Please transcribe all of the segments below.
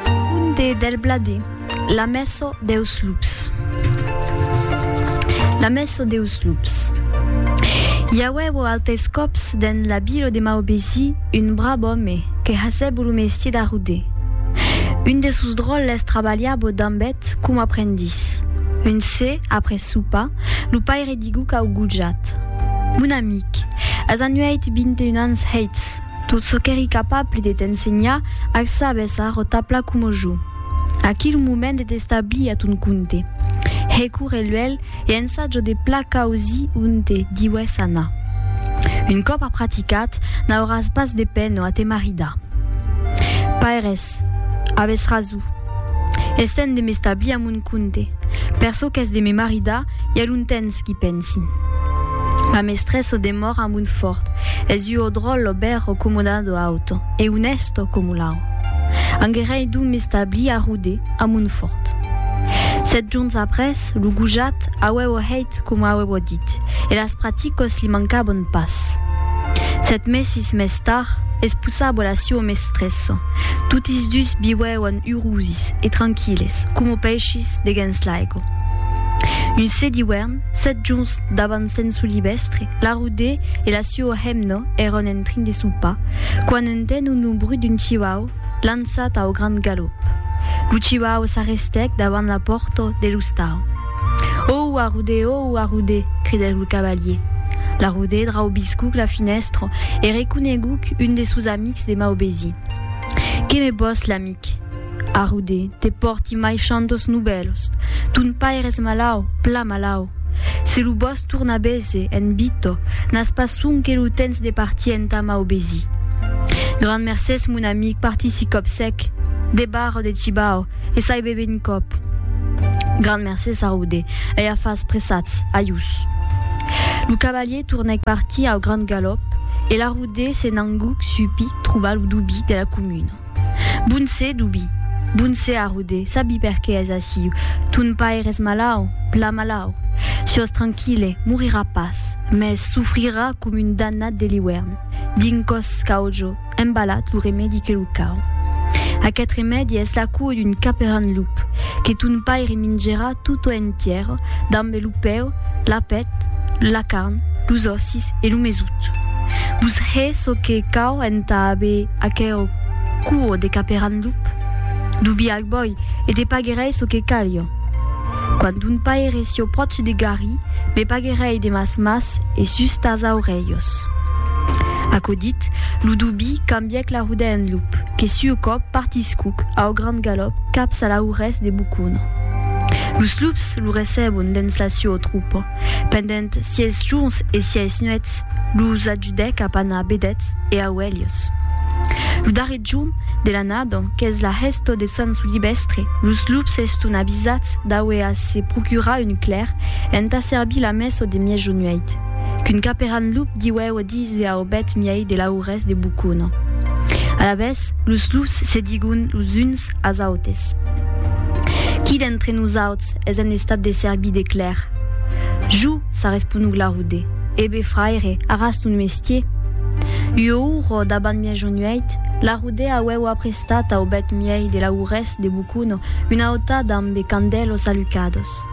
Conde del Bladé, la mèsa deus lups. La mèsa deus lups. I auèvo autes còps dens la vila de Maubesi un brave òme que hasèvo lo mestier d'arruder. Un de sos dròlles trabalhavo damb eth com aprendís. Un se, après sopa, lo paire diguc au gojat, Mon amic, as anuèit vint e un ans hèits. Tot çò qu'èri capable de t'ensenhar ac sabes a rotapla coma jo. Aquí lo moment de t'establir a ton compte. Recorre luèlh e ensaja de pla causi onte diues anar. Un còp a praticat, n'auràs pas de pena a te maridar. Paires. Avès raso. Es temps de m'establir a mon compte. Per çò qu'es de me maridar, i a longtemps qu'i pensi. Ma mestressa o demòra a Montfòrt, es ua o dròl o bèr o comodada o auta, e onèsta coma l'au. Anguerei donc m'establir a Rodé, a Montfòrt. Sèt jorns après, lo gojat auèvo hèit coma auèvo dit. Ait, e las praticos li mancabon pas. Sèt mesis mès tard, espousabo la suo mestresso. Totis dus viuèvan urusis e tranquilles, coma paishis deguens l'aigo. Un se d'iuèrn, sèt jorns davant Sent Solivestre, la Rudé e la suo hemna èran en trin de sopar, quan entenon lo brut d'un chiuau lançat au grand galop. Lo chiuau s'arrestèc davant la pòrta de l'ostau. Òu, arrudé! Òu, arrudé! cridèc lo cavalier. L'arrudé draubiscuc la finèstra e reconeguc un des sos amics de Maubesi. Que me vòs, l'amic? Arrudé, te pòrti mai chantos novèls. Ton pair es malau, plan malau. Se lo vòs tornar vese, en Vito, n'as pas sonque lo tens de partir entà Maubesi. Grand mercés, mon amic, partissi còp sec. Debarra de Cibao, e sai bebe un còp. Grand mercé Saroude, ei a fas pressats, ajús. Lo cavalier tornèc partir au grand galòp e Laroude se n'anguc supi trobar lo Dubi de la comuna. Bon sè, Dubi! Bon sè, Aroude, sabi per qué es aciu, ton pair es malau, pla malau. Siós tranquille, morirà pas, mès sofrirà com un dannat de l'iuèrn, d'un còs caujo, Embalat lo remèdi que lo cau. Aquest remèdi es la cua d'un caperan lup, que ton paire mingerà tota entièra, dambe lo peu, la pèt, la carn, los òssis e lo mesut. Vos hè çò que cau entà aver aquera cua de caperan lup? Dobiac bòi, e te paguerèi çò que calha. Quand un paire s'iò pròch de Garry, me paguerèi de mas mas e sus tas aurelhos. Aquò dit, lo dubi cambièc la ruda en lup, que s'iò còp partiscuc au grand galòp caps a la urès de Bucona. Los lups lo recebon dens la siò trupa, pendent sièis jorns e sièis nuèts, los Didec a Pana Bedètz e a Oèlhos. Lo darrer jorn de l'annada, qu'es la hèsta de Sant Solibèstre, los lups eston avisats d'auer a se procurar un clèr entà servir la messa de miejonuèit, qu'un caperan lup diuèu a díser au bèth miei de l'aurès de Bocona. Alavetz, los lups se digon los uns as autes, Qui d'entre nosauts es en estat de servir de clèr? Jo! s'arresponug Laroude. Ebe, fraire, aras ton mestier! Ua ora dabant mia jonuèit, Laroude auèu aprestat au bèth miei de laurés de bocono una auta dambe candèlos alucados.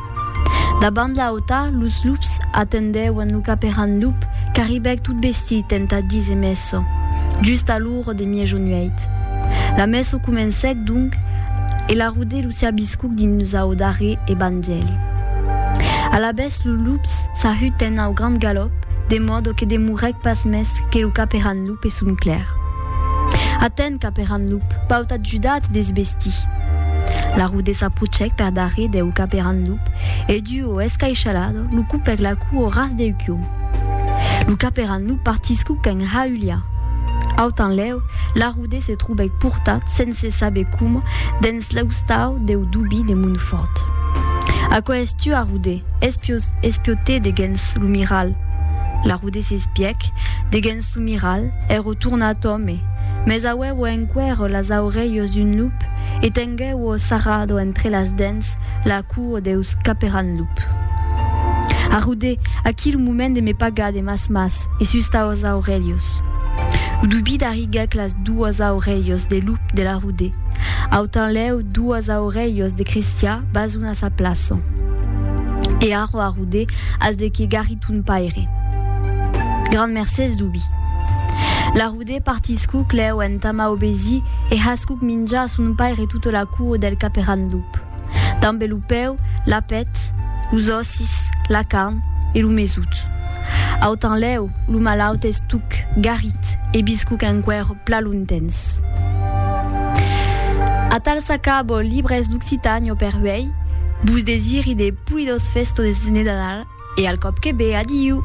Dabant la auta, los lups atendèuen lo caperan lup qu'arribèc tot vestit entà díser messo. Just alora, L'or de Miejo Nueit. La messo comencèc donc e la rode lo serbiscuc dins lo sau darrèr evangèli. Alavetz lo lups s'ahutèn au grand galòp, de mòdo que demorèc pas mès que lo caperan lup e son clèr. Aten, caperan lup, vau t'ajudar a te desvestir. La rode s'aprocèc per darrèr deu caperan lup e, duo escaishalado, lo cupèc la cua au ras deu còu. Lo caperan lo partiscu qu'en Haülia. Aut enlèu, Larrude se trobèc portat, sense saber coma, dens l'eustau deu dubi de Montfòrt. Aquò es tu, Arrude! espiotèt de gens lo miral. Larrude s'espièc de gens lo miral, ero tornat òme, mès auevo enqüèr las aurelhas d'un lup e Tenguèu o sarrado entre las dents la cuo deus caperan lup. Arrudè aquí lo moment de me pagar de mas mas e sus taus aurelhos. Lo dubit arriguèc las duas aurelhos de lup de l'arrudè. Autanlèu duas aurelhos de cristià bas una sa plaço. E arro arrudè as de que garri ton paire. Grand mercés dubi. L'arrudè. Aude partiscu clèu entama obesí e hascuc minjà a son paire tota la cua del caperan lup. Dambe lo peu, la pèt, los òssis, la carn e lo mesut. Autanlèu, lo malaut es tuc, garit e biscuc enqüèr pla lontens. Atal s'acabo Libres d'Occitània per uèi, vos desiri de polidós festones de Nadal e al còp que ve, adiu!